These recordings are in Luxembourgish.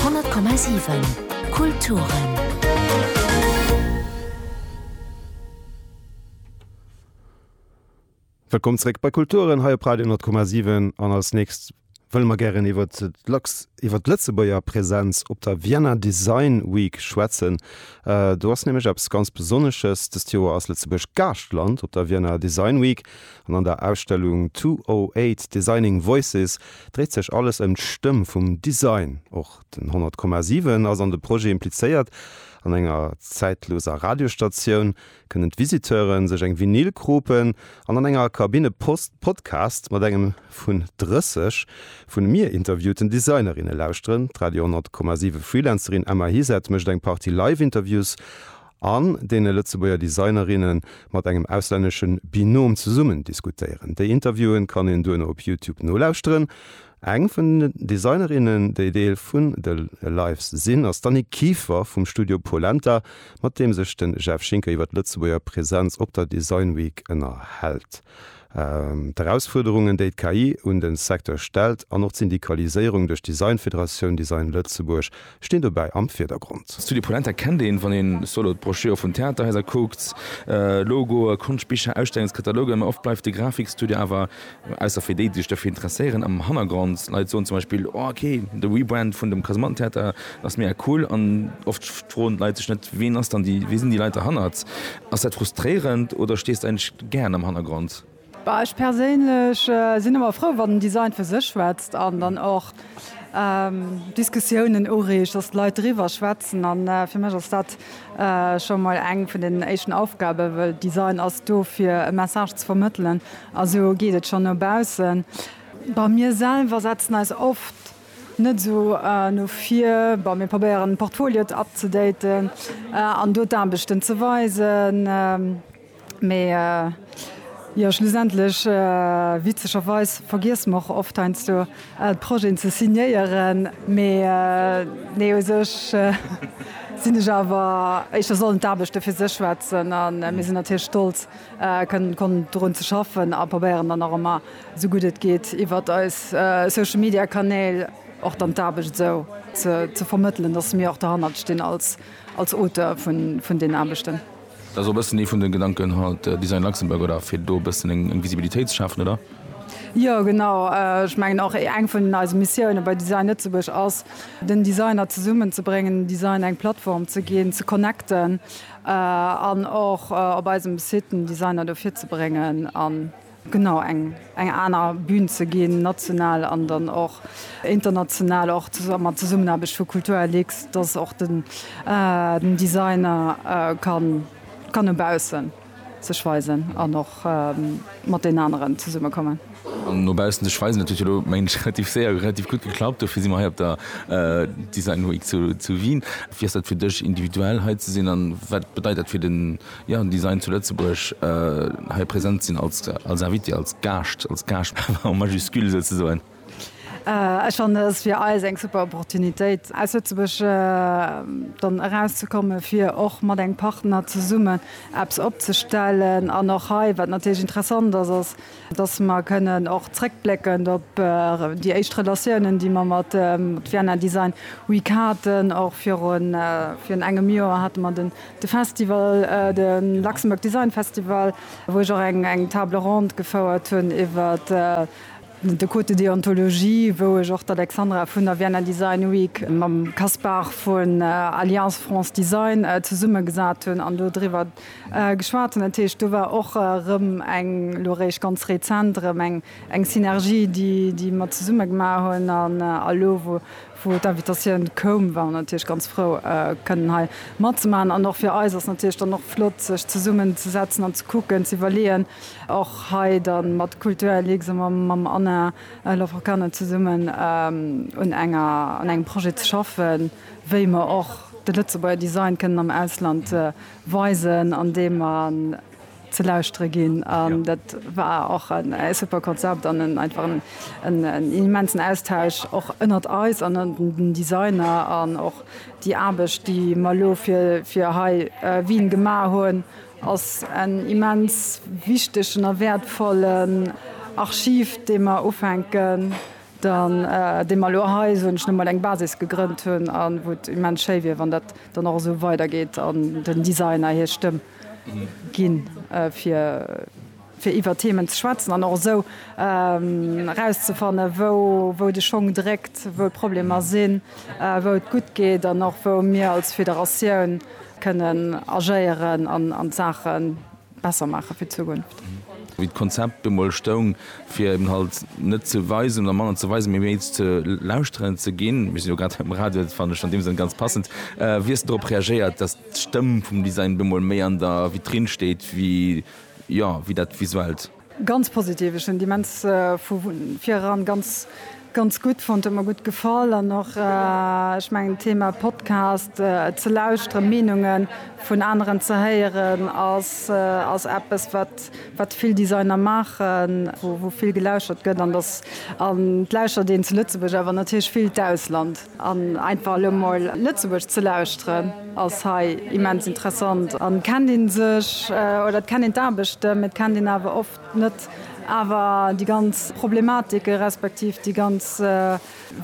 100,7 Kulturen. Wëllkomm zréck bei Kulturen hei op Radio 10,7 an als nächst wëlle mer gären iwwer d'Lux, iwwer d'Lëtzebuerger Präsenz op der Vienna Design Week schwätzen. Äh, do ass nämlech eppes ganz Besonnesches, dëst Joer ass Lëtzebuerg Gaaschtland op der Vienna Design Week. An an der Ausstellung 208, Designing Voices dréit sech alles ëm d'Stëmm vum Design. Och den 100,7 ass an de Projet implizéiert. An enger zäitloser Radiostatioun kënnen d'Visiteure sech eng Vinyl kropen an an enger Kabinne Post Podcast mat engem vun 30 vun mir interviewten Designerinne lauschteren. D'Radio 100,7 Freelancerin Emma Hizet mécht eng Partie Live-Interviews. an deene Lëtzebuerger Designerinne mat engem auslännesche Binom zesummen diskutéieren. Déi Interviewen kann een duerno op Youtube nolauschteren. Eng vun den Designerinnen, déi Deel vun de Lives sinn, ass d'Annick Kieffer vum Studio Polenta, mat deem sech de Jeff Schinker iwwer d'Lëtzebuerger Presenz op der Design Week ënnerhält. D'Erausfuerderungen, déi d'KI un de Secteur stellt, an och d'Syndikaliséierung duerch d'Designfederatioun Design Lëtzebuerg stinn dobäi am Virdergrond. Studio Polenta kennt een, wann een sou elo d'Broschüre vun Theaterhaiser kuckt, Logoe, Konschtbicher, Ausstellungskatalogen. Mä oft bleift de Grafikstudio awer, ausser fir déi, déi sech dofir interesséieren, am Hannergrond. Leit soen zum Beispill, Oh, ok, de Rebrand vun dem Kasemattentheater ass mega cool. An oft froen d'Leit sech net, Ween ass dann déi, wie sinn déi Leit derhannert? Ass dat frustréierend oder stees de eigentlech gären am Hannergrond? Bah, ech perséinlech sinn ëmmer frou, wann den Design fir sech schwätzt an dann och Diskussiounen ureegt, dass d'Leit driwwer schwätzen. A fir mech ass dat scho mol eng vun den éischten Aufgaben, well Design ass do fir e Message ze vermëttelen a sou geet et schonn no baussen. Bah, mir selwer setzen eis oft Net esou no vir. Bon, mir probéieren de Portfolio ab ze daten an do d'Aarbechten ze weisen. Mee jo, schlussendlech, witzegerweis, vergiesse mer och oft heiansdo d'Projeten ze signéieren. Mee nee, u sech sinn ech awer, éischter sollen d'Aarbechte fir sech schwätzen. A mir sinn natierlech stolz kënnen konnten drun ze schaffen a probéieren dann och ëmmer sou gutt et geet iwwert eis Social Media Kanäl och dann d'Aarbecht esou ze vermëttelen, dass mir och derhannert stinn als Auteur vun den Aarbechten. Dat ass och e bëssen ee vun de Gedanken haut, Design Luxembourg, oder fir do e bëssen eng Visibilitéit ze schafen, oder? Jo, genau. Ech mengen och eng vun eise Missiounen bei Design Lëtzebuerg ass, den Designer zesummen ze bréngen, dem Design eng Plattform ze ginn, ze connecten an och op eisem Site den Designer do virzebréngen an, Genau, eng eng aner Bühn ze ginn, national an dann och international, och mat Zesummenaarbecht vu Kulturlux, dass och den den Designer kann kann no baussen sech weisen an och mat den aneren zesummekommen. An no baussen sech weisen, dat huet jo elo mengen ech relativ séier relativ gutt geklappt. Dofir si mer hei op der Design Week zu zu Wien. Wéi ass dat fir dech individuell hei ze sinn an wat bedeit dat fir den Jo, déi seien zu Lëtzebuerg hei present sinn als Invité, als Gaascht, als Gaascht en majuscule souzesoen. Ech fannen, et ass fir eis eng super Opportunitéit, aus Lëtzebuerg dann erauszekommen, fir och mat engem Partner zesummen eppes opzestellen. An och hei, wat natierlech interessant ass, ass, dass mer kënnen och zréckblécken op déi éischt Relatiounen, déi mer mat Vienna Design Week haten. Och virun engem Joer hate mer de Festival, de Luxembourg Design Festival, wou ech och eng Table ronde gefouert hunn iwwer de Code de déontologie, wou ech och d'Alexandra vun der Vienna Design Week mam Caspar vun Alliance France Design zesummegesat hunn an do driwwer Geschwat hunn. Dat heescht, do war och erëm eng, elo eréischt ganz rezent erëm eng, eng Synergie, déi, déi mer zesumme gemaach hunn. An elo, wou, wou d'Invitatioun koum, war mer natierlech ganz frou, kënnen hei matzemaachen. An och fir eis ass natierlech dann och flott, sech zesummenzesetzen an ze kucken, ze iwwerleeën, och hei da mat Kulturlux a mam Anna Laforcade zesummen un enger, un engem Projet ze schaffen. wéi mer och de Lëtzebuerger Design kënnen am Ausland weisen, andeem mer ze lauschtere ginn. An dat war och e super Konzept an en einfach en immensen Austausch och ënnert eis an ënnert den Designer. An och déi Aarbecht, déi mer elo fir hei Wien gemaach hunn, ass en immens wichtegen a wäertvollen Archiv, dee mer ufänken Dan, dee mer elo hei, soen ech emol, eng Basis gegrënnt hunn a wou et immens schéi wier, wann dat dann och esou weidergeet an den Designer hir Stëmm ginn, fir iwwer Themen ze schwätzen an och esou erauszefannen, wou de Schong dréckt, wou d'Problemer sinn, wou et gutt geet an och wou mir als Federatioun kënnen agéieren an d'Saachen. besser maache fir d'Zukunft. Wéi d'Konzept du mol stoung, fir eben halt net ze weisen oder manner ze weisen, mee méi ze lauschteren ze ginn, mir sinn jo grad hei um Radio, dat fannen ech an deem Sënn ganz passend, wéi hues de dorop reagéiert, dass d'Stëmm vum Design du mol méi an der Vitrine steet wéi, jo, wéi dat Visuellt? Ganz positiv, ech hunn déi immens vu vireran ganz ganz gutt fonnt, huet mer gutt gefall an och ech mengen d'Thema Podcast ze lauschteren, Meenunge vun aneren ze héieren ass ass eppes wat wat vill Designer maachen, wou wou vill gelauschtert gëtt an datt an et lauschtert een zu Lëtzebuerg awer natierlech vill d'Ausland. An einfach elo mol Lëtzebuerg ze lauschteren ass hei immens interessant. An et kennt een sech, oder et kennt een d'Aarbechte, mee et kennt een awer oft net awer déi ganz Problematike respektiv déi ganz,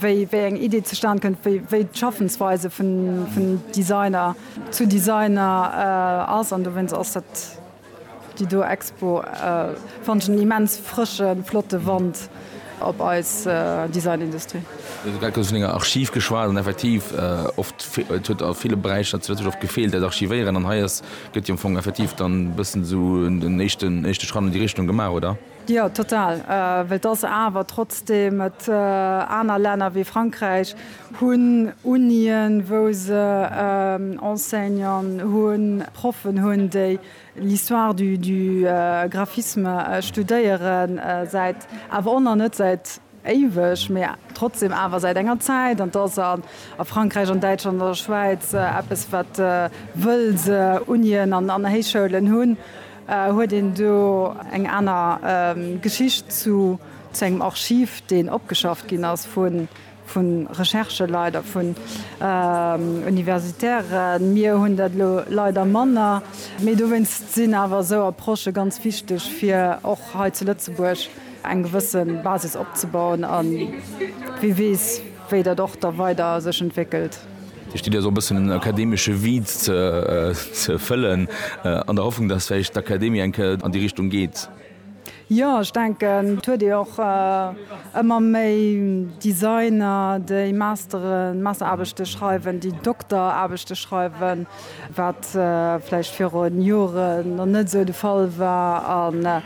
wéi eng Idee zustan kënnt, wéi d'Schaffensweise vun Designer zu Designer ass. An dowéinst ass dat. Déi do Expo fannt ech en immens frëschen, flotte Wand op eis Designindustrie. Mir hu grad kuerz vun enger Archiv geschwat an effektiv oft, et huet a ville Beräicher zu Lëtzebuerg oft gefeelt, dat Archivéieren an hei ass, gëtt jo am Fong effektiv dann e bëssen esou en éischten, éischte Schratt an déi Richtung gemaach, oder? Jo, total. Well et ass awer trotzdem, et aner Länner wéi Frankräich hunn Unien, wou se Enseignanten hunn, Proffen hunn, déi l'histoire du graphisme studéieren, säit awer och nach net säit, Éiweg, mee trotzdem awer säit enger Zäit. An 't ass a Frankräich, an Däitschland, an der Schwäiz eppes, wat wëll se Unien an Héichschoulen hunn, huet een do eng aner Geschicht zu engem Archiv, deen opgeschafft ginn ass vu Rechercheleit a vun Universitairen. Mir hunn dat elo leider manner, mee dowéinst sinn awer esou Approchë ganz wichteg fir och hei zu Lëtzebuerg. eng gewësse Basis opzebauen a wie weess, wéi dat och da weider sech entwéckelt. Dir stitt jo esou e bëssen en akademesche Vide ze fëllen, an der Hoffnung, datt vläicht d'Akademie eng Kéier an déi Richtung geet. Jo, ech denken, et huet ee och ëmmer méi Designer, déi Masteren, Masteraarbechte schreiwen, déi Dokteraarbechte schreiwen, wat vläicht viru Jore nach net esou de Fall war.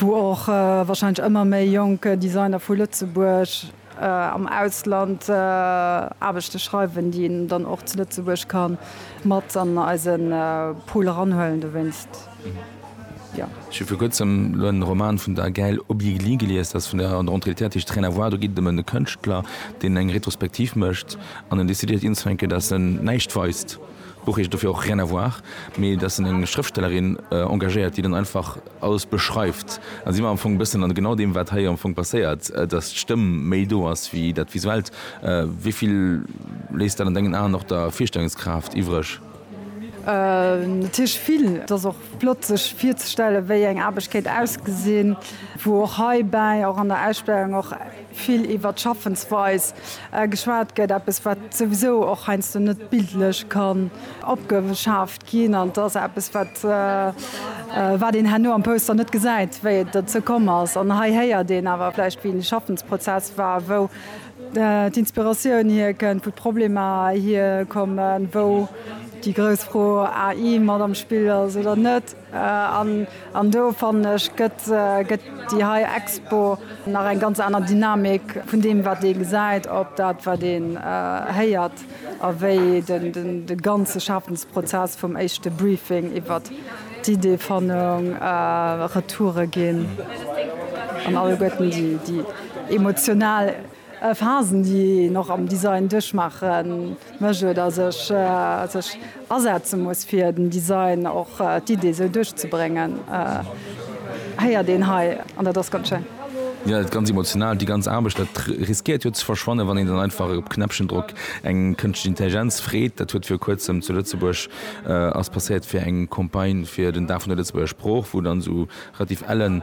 wou och wahrscheinlech ëmmer méi jonk Designer vu Lëtzebuerg am Ausland Aarbechte schreiwen, déi een dann och zu Lëtzebuerg ka mat an eise Pool eranhuelen. Dowéinst, jo. Ech hu vir kuerzem elo en Roman vun der Gaëlle Obiegli gelies, dat ass vun der Rentrée literartische Rien à voir. Do geet et ëm e Kënschtler, deen eng Retrospektiv mécht an en decidéiert unzefänken, dass en näischt weist. D'Buch heescht dofir och Rien à voir, mee dass en eng Schrëftstellerin engagéiert, déi dann einfach, alles beschreift, da si mer am Fong e bëssen an genau deem, wat hei am Fong passéiert, dass d'Stëmm méi do ass wéi dat Visuellt. Wéi vill léisst dat an dengen Aen och der Virstellungskraaft iwwreg? Natierlech vill. Et ass och flott, sech virzestellen, wéi eng Aarbecht kéint ausgesinn, wou och heibäi, och an der Ausstellung, och vill iwwert d'Schaffensweis geschwat gëtt, eppes, wat souwisou och heiansdo net bildlech kann opgeschaaft. Ginn an et ass eppes, wat, wat een herno am Poster net gesäit, wéi et dozou komm ass. An hei héiert een awer vläicht, wéi de Schaffensprozess war, wou d'Inspiratioun hierkënnt, wou d'Problemer hierkommen, wou déi grouss Fro AI mat am Spill ass oder net. An, an do fannen ech, gëtt, gëtt déi hei Expo nach eng ganz aner Dynamik vun deem, wat ee gesäit, op dat, wat ee héiert. a wéi de ganze Schafensprozess vum éischte Briefing iwwer d'Ideefannung, Retoure ginn an alleguerten déi emotional Phasen, déi een och am Design duerchmaache mécht oder sech. Asetze muss fir den Design och d'Idee sou duerchzebréngen héiert een hei an dat ass ganz schéin. Jo, et ganz emotional. Déi ganz Aarbecht, dat riskéiert jo ze verschwannen, wann een dann einfach op Knäppchendrock eng kënschtlech Intelligenz freet. Dat huet viru kuerzem zu Lëtzebuerg ass passéiert fir eng Campagne fir den Dag vun der Lëtzebuerger Sprooch, wou dann esou relativ ellen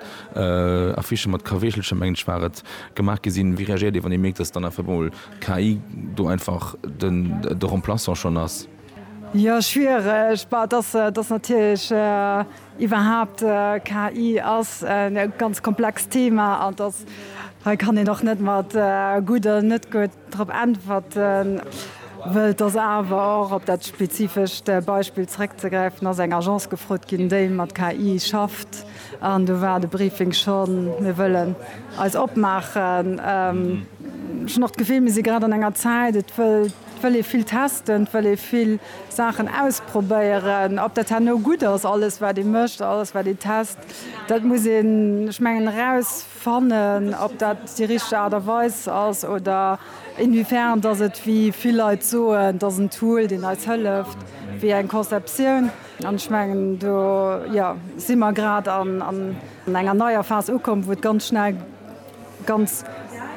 Affichen mat Kaweechelcher, mengen ech war et, gemaach gi sinn. Wéi reagéiert Dir wann Dir mierkt, datt dann einfach emol KI do einfach de Remplaçant schonn ass? Jo, schwiereg. Bah, dass dass natierlech iwwerhaapt KI ass e ganz komplext Thema an dass hei kann een och net mat gutt oder net gutt drop äntwerten, wëll et ass awer och, op dat spezifescht Beispill zrëckzegräifen, ass eng Agence gefrot ginn, déi mat KI schafft. An do war de Briefing schonn, Mir wëllen eis opmaachen. Ech hunn och d'Gefill, mir si grad an enger Zäit, et wëll ee vill testen, et wëll ee vill Saachen ausprobéieren. Ob dat herno gutt ass, alles wat ee mécht, alles wat ee test, dat muss een, ech mengen, erausfannen, ob dat déi richteg Aart a Weis ass oder inwiefern dass et, wéi vill Leit soen, et ass en Tool, deen eis hëlleft, wéi eng Conceptioun. An ech mengen, do, jo, si mer grad an enger neier Phas ukomm, wou et ganz schnell ganz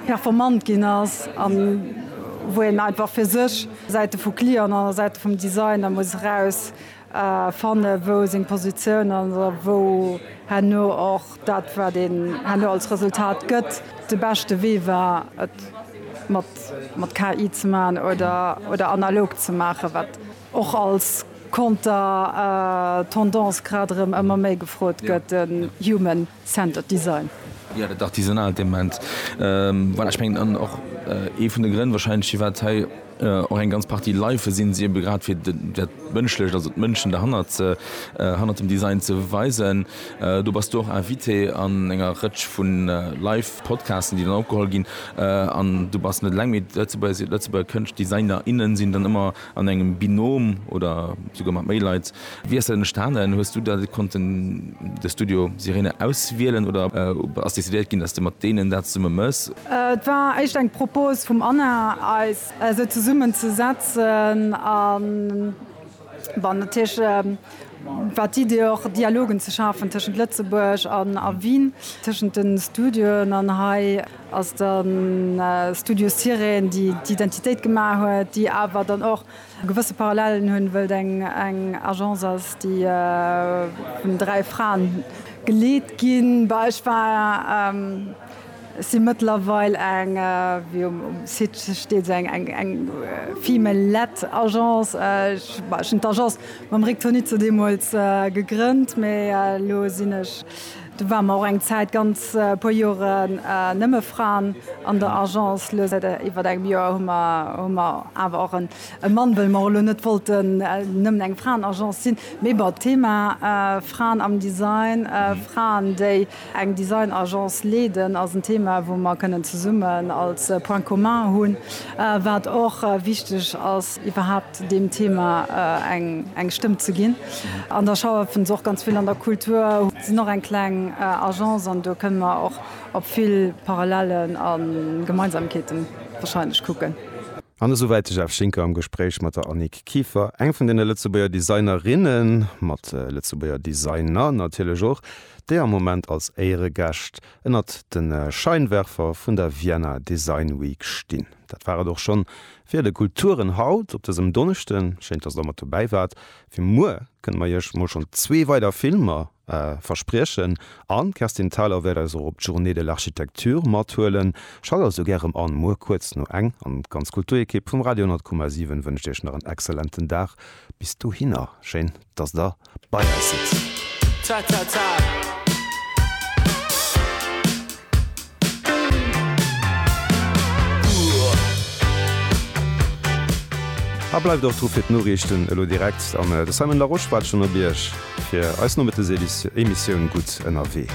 performant ginn ass a wou een einfach fir sech, Säite vu Client an Säite vum Designer, muss eraus fanne wou seng Positioun ass a wou herno och dat, wat een herno als Resultat gëtt, de beschte Wee war, et mat KI ze maachen oder analog ze maachen. och als Konter-Tendance grad erëm ëmmer méi gefrot gëtt, de Human Centered Design. Jo, dat artisanaalt Element, voilà, ech mengen an och ee vun de Grënn wahrscheinlech firwat hei och eng ganz Partie Life sinn, si ebe grad fir dat Mënschlecht, also d'Mënschen derhannert, hannert dem Design ze weisen. Do bass du och Invité an enger Rëtsch vu Life Podcasten, déi dann opgeholl ginn an du bass net eleng, mee d'Lëtzebuerger Kënscht-, Designer, innen sinn dann ëmmer, An engem Binom oder souguer mat méi Leit, wéi ass dat entstanen? Hues du dat konnten de Studio Sirene auswielen oder ass decidéiert ginn, datt s de mat deenen dat zesumme mëss? Et war éischt eng Propose vum Anna, eis esou zesummen ze setzen a bon natierlech war d'Idee och Dialogen ze schafen tëschent Lëtzebuerg a Wien, tëschent de Studioen an hei. Ass dann Studio Sirène déi d'Identitéit gemaach huet, déi awer dann och gewësse Parallelen hunn, wëll et eng Agence ass déi vun dräi Fraen geleet ginn. Bah ech war, si mëttlerweil eng, wéi um Site steet se eng female led Agence. Ech, bah ech hunn d'Agence mam Rick Tonizzo deemools gegrënnt, mee elo sinn ech, Do ware mer och eng Zäit, ganz puer Joren, nëmme Fraen an der Agence. Elo säit iwwer engem Joer hu mer hu mer awer och e Mann, wëll mer och elo net wollten nëmmen eng Fraenagence sinn. Mee bon, d'Thema Fraen am Design, Fraen, déi eng Designagence leeden, ass en Thema, wou mer kënnen zesummen als Point commun hunn, wat och wichteg ass. iwwerhaapt deem Thema eng Stëmm ze ginn. An da schaffen se och ganz vill an der Kultur, sinn och eng kleng Agence an do kënne mer och op vill Parallellen a Gemeinsamkeete warscheinlech kucken. An esou wäit de Jeff Schinker am Gespréich mat der Annick Kieffer, eng vun deene Lëtzebuerger Designerinne mat Lëtzebuerger Designer natierlech och, déi am Moment als Éieregäscht ënnert de Scheinwerfer vun der Vienna Design Week stinn. Dat war et och schonn Fir de Kulturen haut op dësem Donneschden, schéin dass der mat dobäi waart. Fir muer kënne mer iech mol schonn zwee weider Filmer verspriechen an d'Kerstin Thalau wäert eis och op d'Journée de l'Architecture mathuelen. Schalt also gär erëm an, muer kuerz no eng. An d'ganz Kulturekipp vum Radio 100,7 wënscht iech nach en exzellenten Dag bis dohinner. Schéin. dass der bei eis sëtzt. Ta ta ta! A bleift och dru fir d'Noriichten elo direkt. An de Simon Larosche waart schonn op Iech fir eis Nomettesemissioun gutt ënnerwee.